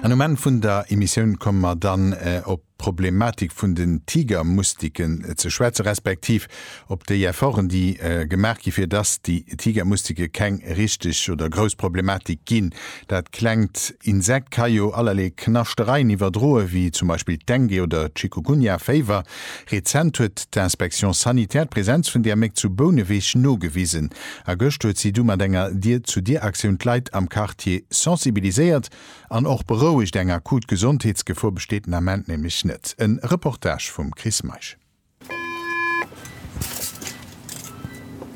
An um Enn vun der Emissioun komme mer dann op d'Problematik vun den Tigermustiken ze schwätzen, respektiv op déi Efforten, déi gemaach gi fir dass déi Tigermustike keng richteg oder grouss Problematik ginn. Dat klengt Insekt ka jo allerlee Knaschtereien iwwerdroen, wéi zum Beispill d'Dengue oder d'Chikungunya-Féiwer. Rezent huet d'Inspection sanitaire d'Presenz vun där Méck zu Bouneweg nogewisen. A gëscht huet si du mat enger Dier-zu-Dier-Aktioun d'Leit am Quartier sensibiliséiert an och berouegt. Eng akut Gesondheetsgefor besteet den Ament nämlech net. E Reportage vum Chris Meisch.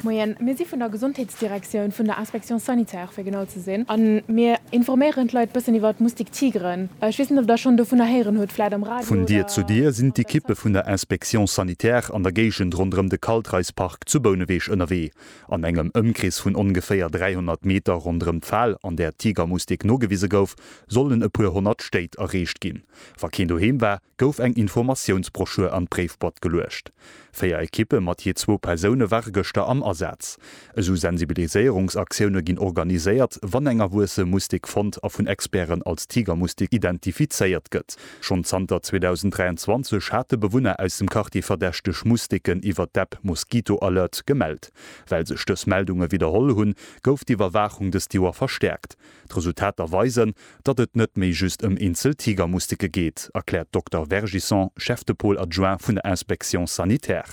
Moien, mir si vun der Gesondheetsdirektioun, vun der Inspection sanitaire fir genau ze sinn, a mir informéieren d'Leit e bëssen iwwer d'Moustique tigre. Ech weess net, ob der schonn dovunner héieren hutt, vläit am Radio oder. Vun Dier zu Dier sinn d'Ekippe vun der Inspection sanitaire an der Géigend ronderëm de Kaltreis-Park Zu Bouneweg ënnerwee, an engem Ëmkrees vun ongeféier 300 Meter ronderëm d'Fal, an där d'Tigermustik nogewise gouf, sollen e puer honnert Stéit erreecht ginn. Wa keen doheem war, gouf eng Informatiounsbroschür an d'Bréifboîte geluecht. Véier Ekippe mat jee zwou Persoune ware gëschter am Asaz. Esou Sensibiliséierungsaktioune ginn organiséiert, wann eng erwuesse Mustik fonnt a vun Experten als Tigermustik identifizéiert gëtt. Schonn zanter 2023 hate Bewunner aus dem Quartier verdächteg Musteken iwwer d'App Mosquito Alert gemellt. Well sech dës Meldunge widderholl hunn, gouf d'Iwwerwaachung dëst Joer verstäerkt. D'Resultater weisen, datt et net méi just ëm eenzel Tigermusteke geet, erkläert d'Dokter Vergisson, Chef de Pôle adjoint vun der Inspection sanitaire.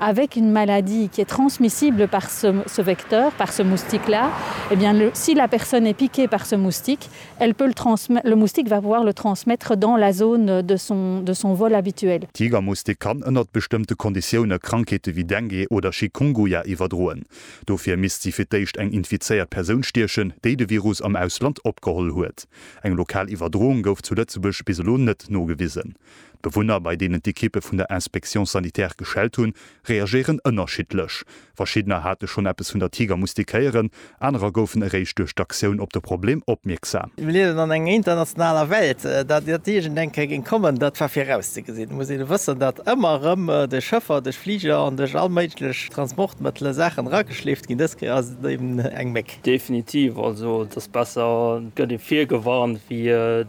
Avec une maladie qui est transmissible par ce ce vecteur, par ce moustique là, eh bien le si la personne est piquée par ce moustique, elle peut le transmet le moustique va pouvoir le transmettre dans la zone de son de son vol habituel. Tigermoustik kann ënnert bestëmmte Konditioune Krankheete wéi Dengue oder Chikunguya iwwerdroen. Dofir misst si fir d'éischt eng infizéiert Persoun stiechen, déi de Virus am Ausland opgeholl huet. Eng lokal Iwwerdroung gouf zu Lëtzebuerg bis elo net nogewisen. D'Bewunner, bei deenen d'Ekippe vun der Inspection sanitaire geschellt hunn, reagéieren ënnerschiddlech. Verschiddener hate schonn eppes vun der Tiger mustékéieren, anerer goufen eréischt duerch d'Aktioun op de Problem opmierksam. Mir liewen an enger internationaler Welt. Datt iert iergend eng Kéier géing kommen, dat war virauszegesinn. Et muss een wëssen, datt ëmmer erëm duerch Schëffer, duerch Fliger an duerch all méiglech Transportmëttele Saachen erageschleeft ginn. Dës Kéier ass et eben eng Méck. Definitiv. Also et ass besser, et gëtt ee virgewarnt, wéi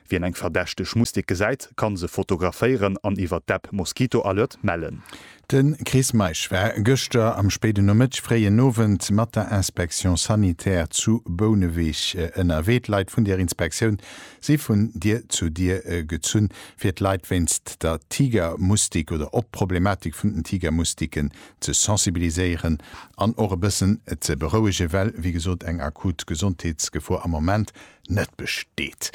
Wien eng verdächteg Mustik gesäit, kann se fotograféieren an iwwer d'App Mosquito Alert mellen. De Chris Meisch war gëschter am spéiden Nomëtteg, fréien Owend mat der Inspection sanitaire zu Bouneweg ënnerwee. D'Leit vun der Inspektioun si vun Dier zu Dier gezunn, fir d'Leit wéinst der Tigermustik oder op d'Problematik vun den Tigermustiken ze sensibiliséieren an och e bëssen ze berouegen, well, wéi gesot, eng akut Gesondheetsgefor am Moment net besteet.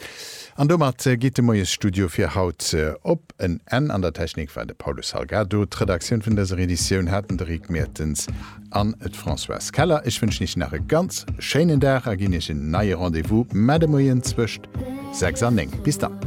An domat geet de Moiesstudio fir haut op en Enn. An der Technik war de Paulo Salgado. D'Redaktioun vun dëser Editioun haten de Rick Mertens an d'Françoise Keller. Ech wënschen Iech nach e ganz schéinen Dag a ginn Iech en neie Rendez-vous, mä de Moien zwëscht 6 an 9. Bis dann.